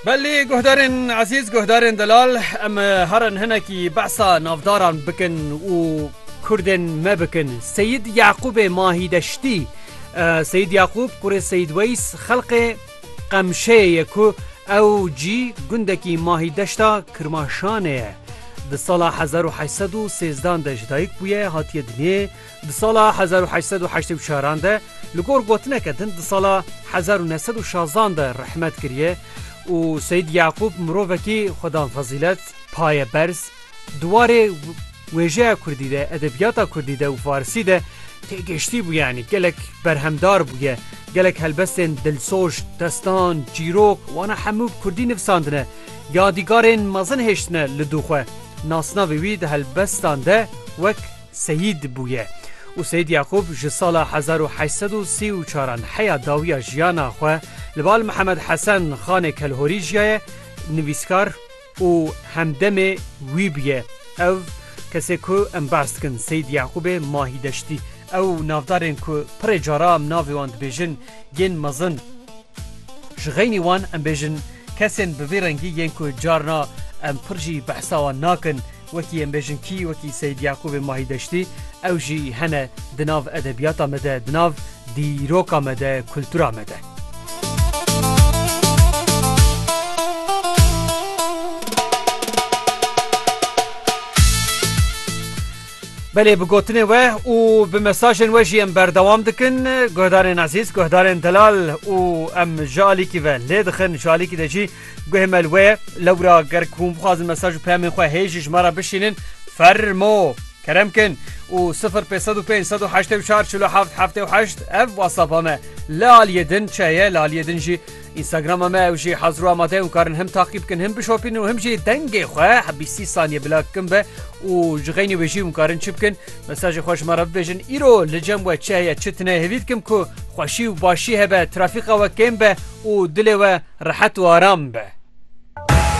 Belê guhdarên ezîz guhdarên delal em herin hinekî behsa navdaran bikin û Kurdên me bikin. Seyîd Yaqûbê Mahîdeştî Seyîd Yaqûb kurê Seyîd Weys xelqê Qemşeyê ye ku ew cî gundekî Mahîdeşta Kirmaşanê ye. Di sala hezar û heşt sed û sêzdan de ji dayik bûye hatiye dinyê. Di sala hezar û heşt sed û heştê û çaran de li gor gotineke din di sala hezar û neh sed û şazan de rehmet kiriye û Seyîd Yaqûb mirovekî xwedan fezîlet, paye berz, di warê wêjeya kurdî de, edebiyata kurdî de û farsî de têgihiştî bû yanî gelek berhemdar bûye, gelek helbestên dilsoz, destan, çîrok wana hemû bi kurdî nivisandine, yadîgarên mezin hêştine li dû xwe. Nasnavê wî di helbestan de wek. Seyîd bûye û Seyîd Yaqûb ji sala hezar û heşt sed û sî û çar an heya dawiya jiyana xwe li bal Mihemed Hesen Xanê Kelhorî jiyaye, nivîskar û hemdemê wî bûye. Ew kesê ku em behs dikin Seyîd Yaqûbê Mahî Deştî. Ew û navdarên ku pirê cara em navê wan dibêjin yên mezin ji xeynî wan em bêjin kesên bi vî rengî yên ku carna em pir jî behsa wan nakin, Wekî em bêjin kî, wekî Seyîd Yaqûbê Mahî Deştî, ew jî hene di nav edebiyata me de, di nav dîroka me de, kultura me de. Belê bi gotinê we û bi mesajên we jî em berdewam dikin guhdarên ezîz guhdarên delal û em ji alîkî ve lê dixin ji alîkî de jî Guhê me li we ye. Lewra ger ku hûn bixwazin mesaj û peyamên xwe hê jî ji me re bişînin, fermo! Kerem kin û sifir pênc sed û pênc sed û heştê û çar çil û heft heftê û heşt ev whatsapp-a me. Li aliyê din çi heye? Li aliyê din jî Instagram-a me ew jî hazir û amade ye hûn karin him taqîb bikin him bişopînin û him jî dengê xwe bîstî saniye bila kin be û ji xeynî wê jî hûn karin çi bikin? Mesajê xwe ji me re bibêjin îro li cem we çi heye çi tine hêvî dikim ku xweşî û başî hebe, trafîka we kêm be û dilê we rehet û aram be.